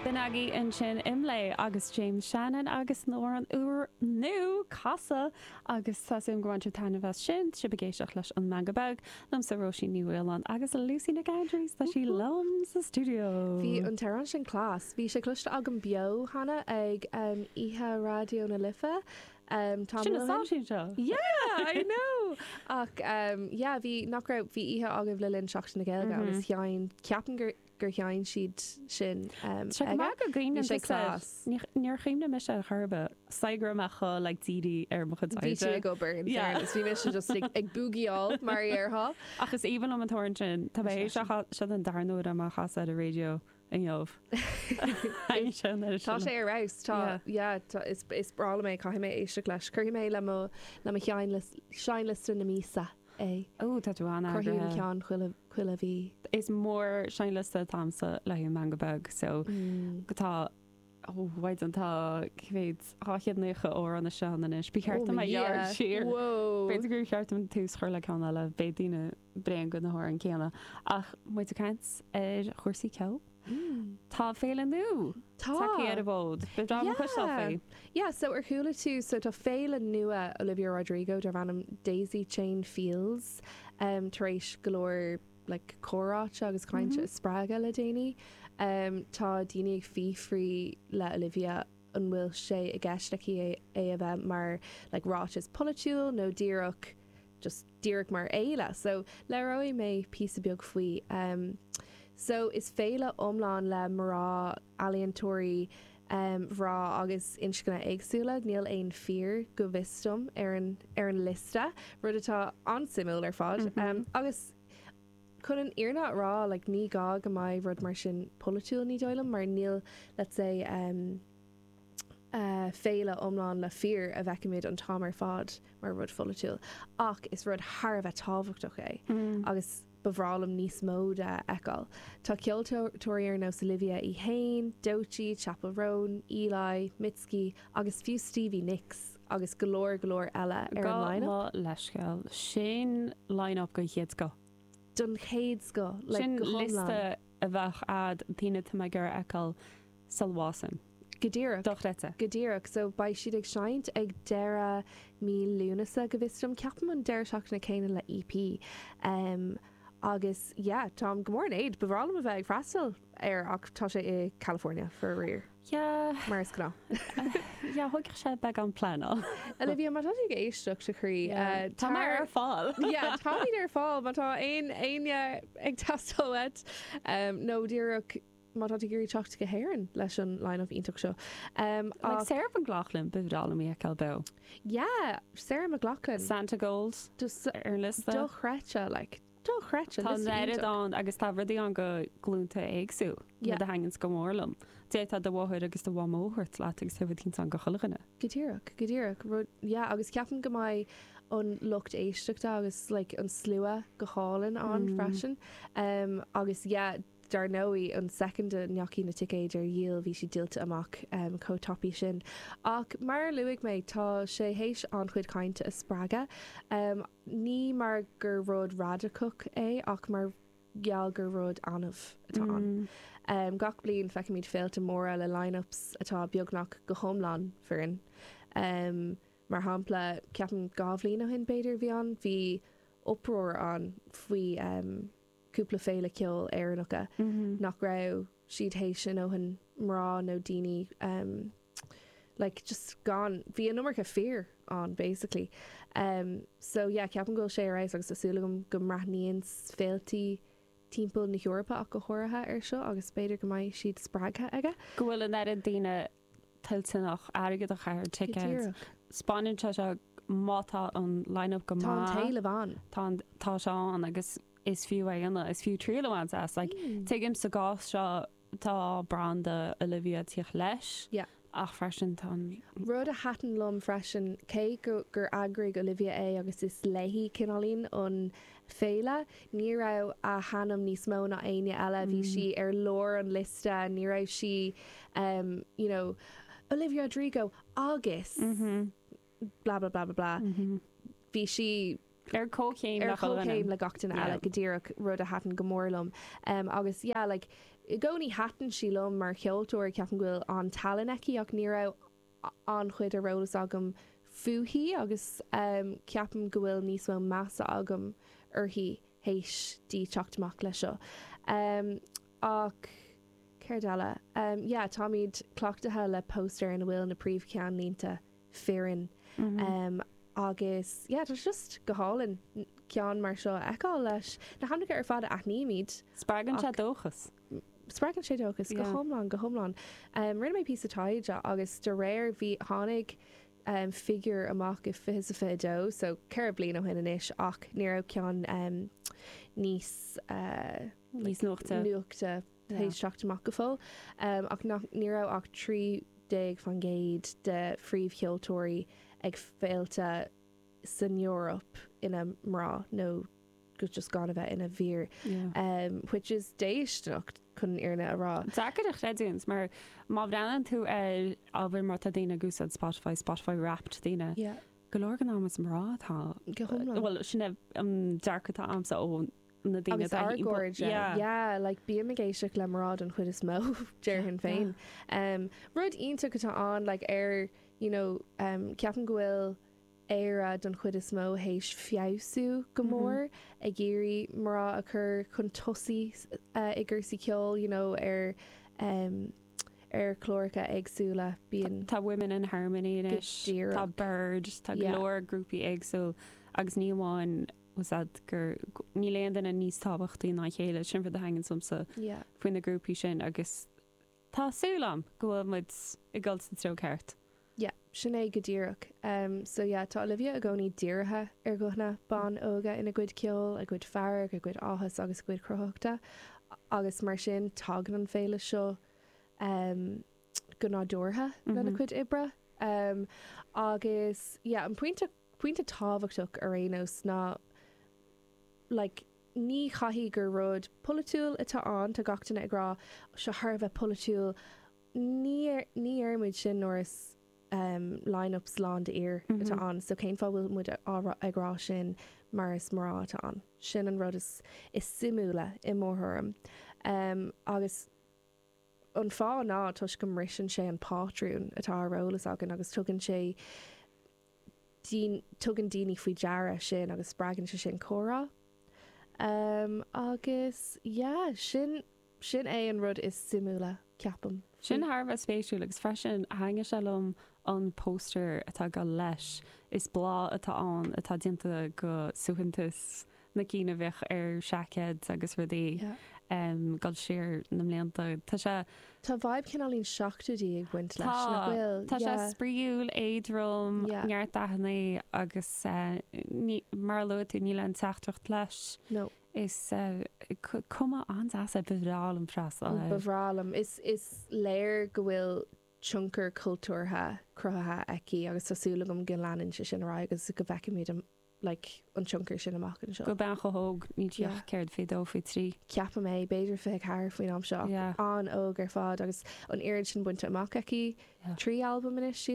B'in agaibh ansin Imlé agus James Shannon agus a n-amhrán úr nua Casadh agus tá súil a'm gur bhain tú taitneamh as sin. Tá sibh ag éisteacht leis an Meangadh Beag. Liomsa Róisín Ní Mhaoláin agus Lucy Nic Aindreas tá sí liom sa stiúideo. Bhí an t-amhrán sin class. Bhí sé cloiste agam beo cheana ag oíche Raidió na Life. Ehm tamall ó shin. Sin na sáitín seo. Yeah I know! Ach ehm yeah bhí nach raibh bhí oíche agaibh le linn Seachtain na Gaeilge agus sheinn ceapaim gur gur sheinn siad sin ehm Sé go aige. maith go gcuimhníonn Bhí sé tusa class. Ní níor chuimhnigh mise ar chor ar bith. Is dóigh go raibh mé chomh like dírithe ar mo chuid Bhí tú oibre. ag obair in Yeah. fairness. Bhí mise just ag ag búgíáil mar a dhéarfá. Ach is aoibhinn liom an t-amhrán sin. Tá mé Is é th'éis sin. a chas, seo é an darna uair dom é a chasadh ar an radio. inniu. Thaitnigh sé an iris. Tá sé ar fheabhas. Tá, yeah, tá, is, is breá liom é, caithfidh mé éisteacht leis. Cuirfidh mé le mo, le mo sheinnlios, seinnliosta na míosa é. Ó, tá tú an-eagraithe. Cuirfidh an ceann chuile, chuile mhí. Is mór-seinnliosta atá a'msa le haghaidh Meangadh Beag, so tá, ó, a Mhaighdean, tá, cé mhéad, 290 amhrán istigh ann anois. Ba cheart dom é a ghearradh siar. Whoa! B'fhéidir gur cheart dom tús chur le ceann eile, beidh daoine. bréan de na hamhráin céanna. Ach muid ag caint ar chúrsaí ceoil, tá féile nua tagtha ar an bhfód. Ba bhreá liom cloisteáil faoi. Yeah, so ar chuala tú, so tá féile nua Olivia Rodrigo darb ainm Daisy Chain Fields tar éis go leor like comhráite agus cainte a spreagadh le déanaí. Tá daoine ag fiafraí le Olivia an bhfuil sé i gceist aici é a bheith mar like ráiteas polaitiúil nó díreach just díreach mar fhéile so labhróidh mé píosa beag faoi em so is féile iomlán le mná ealaíontóirí em mhná agus inscne éagsúla níl aon fir go bhfios dom ar an ar an liosta rud atá an-suimiúil ar fad em agus chun an fhírinne a rá like ní gá go mbeidh rud mar sin polaitiúil ní dóigh liom mar níl let's say em féile iomlán le fir a bhfeicimid an t-am ar fad mar rud pholaitiúil, ach is rud thar a bheith tábhachtach é agus ba bhreá liom níos mó de a fheiceáil. Tá ceoltóirí ar nós Olivia í fhéin, Doechii, Chappell Roan, Eli, Mitski agus fiú Stevie Nicks agus go leor go leor eile ar an line-up. Gabh mo leithscéal, sin line-up den chéad scoth. Den chéad scoth, like go hiomlán. Sin liosta a bheadh a'd daoine atá mé ag iarraidh a fheiceáil. Chappell Roan. Go díreach, dochreidte. Go díreach. So, beidh siad ag seinnt ag deireadh mí Lúnasa, go bhfios dom, ceapaim an deireadh seachtaine céanna le EP. Agus, yeah, táim go mór in éad, ba bhreá liom a bheith ag freastal air ach tá sé i California, faraor. Yeah. Mar is gnáth. Yeah, thógfadh sé beagán pleanáil. Olivia, má tá tú ag éisteacht, a chroí, tá mé ar fáil. Yeah, táimid ar fáil má tá aon éinne ag teastáil uait, nó díreach. má tá tú ag iarraidh teacht go hÉirinn leis an line-up iontach seo. Like Sarah McLachlan, ba bhreá liom í a fheiceáil beo. Yeah, Sarah McLachlan. Santigold ar an liosta. Dochreidte, like, dochreidte. Tá an oiread ann agus tá rudaí ann do ghlúnta éagsúla. Yeah. Rud a thaitníonns go mór liom. D'fhéadfá do mháthair agus do mhamó a thabhairt leat agus tá rud eicínt ann do chuile dhuine. Go díreach, go díreach. Rud, yeah, agus ceapaim go mbeidh an lucht éisteachta agus like, an slua go hálainn ann mm. freisin. Um, agus yeah, Dar ndóigh, an soicind a ndeachaigh na ticéid ar díol bhí siad díolta amach chomh tapaidh sin. Ach mar a luaigh mé, tá sé théis an-chuid cainte a spreagadh, ní mar gur rud radacach é ach mar gheall gur rud annamh atá ann. Gach bliain feicimid féilte móra le line-ups atá beagnach go hiomlán fireann. Mar shampla, ceapaim dhá bhliain ó shin, b'fhéidir, bhí ann, bhí uproar ann faoi. cúpla féile ceoil Éireannacha nach raibh siad théis a ndóthain mná nó daoine em like just go raibh an iomarca fir ann basically em so yeah ceapaim go bhfuil sé ar fheabhas agus tá súil agam go mbreathnaíonns féilte timpeall na hEorpa ach go háirithe ar seo agus b'fhéidir go mbeidh siad spreagtha aige. Go bhfuil an oiread daoine toilteanach airgead a chaitheamh ar ticket. Spáineann sé seo má tá an line-up go maith. Tá an t-éileamh ann. Tá sé ann agus is fiú é a dhéanamh, is fiú triail a bhaint as. Like, tuigim sa gcás seo tá branda Olivia ag tíocht leis. Yeah. Ach freisin tá an... Rud a thaitin liom freisin, cé gur eagraigh Olivia é agus is léi cineáilín an Féile. Ní raibh a hainm níos mó ná éinne eile, bhí sí i lár an liosta, ní raibh sí you know Olivia Rodrigo agus blah blah blah blah blah, bhí sí ar comhchéim ar comhchéim le gach duine eile go díreach, rud a thaitin go mór liom agus yeah like i gcónaí thaitin sí liom mar cheoltóir, ceapaim go bhfuil an-tallann aici ach ní raibh an-chuid ar eolas agam fúithi agus ceapaim go bhfuil níos mó measa agam uirthi théis di teacht amach leis seo. Ach céard eile? Yeah, táimid cleachtaithe le póstaeir ina bhfuil na príomh-cheannlínte fireann agus yeah, tá sé just go hálainn ceann mar seo a fheiceáil leis na hainmneacha ar fad a aithnímid. Spreagann sé dóchas. Spreagann sé dóchas. Go hiomlán, go hiomlán. Rinne mé píosa taighde agus de réir, bhí, tháinig figure amach i 2022, so ceithre bliain ó shin anois, ach ní raibh ceann níos, níos nuachta, nuachta théis teacht amach go fóill, ach nach, ní raibh ach 13% de phríomhcheoltóirí ag féilte san Eoraip ina mná nó, go just gan a bheith ina bhfir, which is déistineach chun an fhírinne a rá. Deacair a chreidiúint mar má bhreathnaíonn tú ar ábhair mar atá daoine ag úsáid Spotify, Spotify Wrapped, daoine, go leor den am is mná atá, go hiomlán, bhuel sin é an dearcadh atá agamsa ó na daoine agus a gcairde, yeah, like bím ag éisteacht le mná den chuid is mó, déarfainn féin. Rud iontach atá ann like ar, you know, ceapaim go bhfuil Éire don chuid is mó théis feabhsú go mór, ag iarraidh mná a chur chun tosaigh i gcúrsaí ceoil you know ar ar chláracha éagsúla. Bíonn, tá Women in Harmony anois, tá BIIRD, tá go leor grúpaí éagsúil agus ní amháin, is é gur níl aon duine níos tábhachtaí ná a chéile, sin an rud a thaitníos liomsa faoi na grúpaí sin agus, Tá súil a'm go bhfuil muid ag dul sa treo ceart. Yeah, sin é go díreach. Em, so yeah, tá Olivia i gcónaí dírithe ar ghuthanna ban óga ina cuid ceoil, a gcuid fearg, a gcuid áthas agus a gcuid cruthaitheachta agus mar sin tagann an féile seo, em, go nádúrtha lena cuid oibre. Em, agus yeah, an pointe Pointe tábhachtach ar aon nós ná like ní chaithfidh gur rud polaitiúil atá ann, tá gach duine ag rá seo thar a bheith polaitiúil, ní ní dheirimid sin nuair is ehm line-ups lán de fhir atá ann so cén fáth a bhfuil muid ag rá sin nuair is mná atá ann, sin an rud is is suimiúla i mo thuairim. Ehm agus an fáth ná toisc go mbriseann sé an pátrún atá ar eolas againn agus tugann sé tugann daoine faoi deara sin agus spreagann sé sin comhrá. Agus, yeah, sin, sin é an rud is suimiúla, ceapaim. Sin thar a bheith spéisiúil agus freisin thaitnigh sé liom an poster atá ag gabháil leis. Is bláth atá ann atá déanta de suaitheantas na cinn a bhíodh ar seaicéad agus rudaí ag dul siar na mblianta. Tá sé. Tá vibe cineál na seachtóidí ag baint leis, nach bhfuil? Tá. Tá sé spraíúil, éadrom, neart dathanna agus ní, mar a luaigh tú, níl aon teachtaireacht leis. No. Tá cuma an-deas air. Ba bhreá liom freastal air. Ba bhreá liom. Is léir go bhfuil tionchar cultúrtha cruthaithe aici agus tá súil agam go leanann sé sin ar aghaidh agus go bhfeicfimid an. like, an tionchar sin amach anseo. Do bhean chomh hóg, níl sí ach, Yeah. céard, fiche dó, fiche trí? Ceapaim, b'fhéidir fiche ceathair faoin am seo. Yeah. An-óg ar fad agus an oiread sin bainte amach aici. Yeah. Trí albam anois, sílim.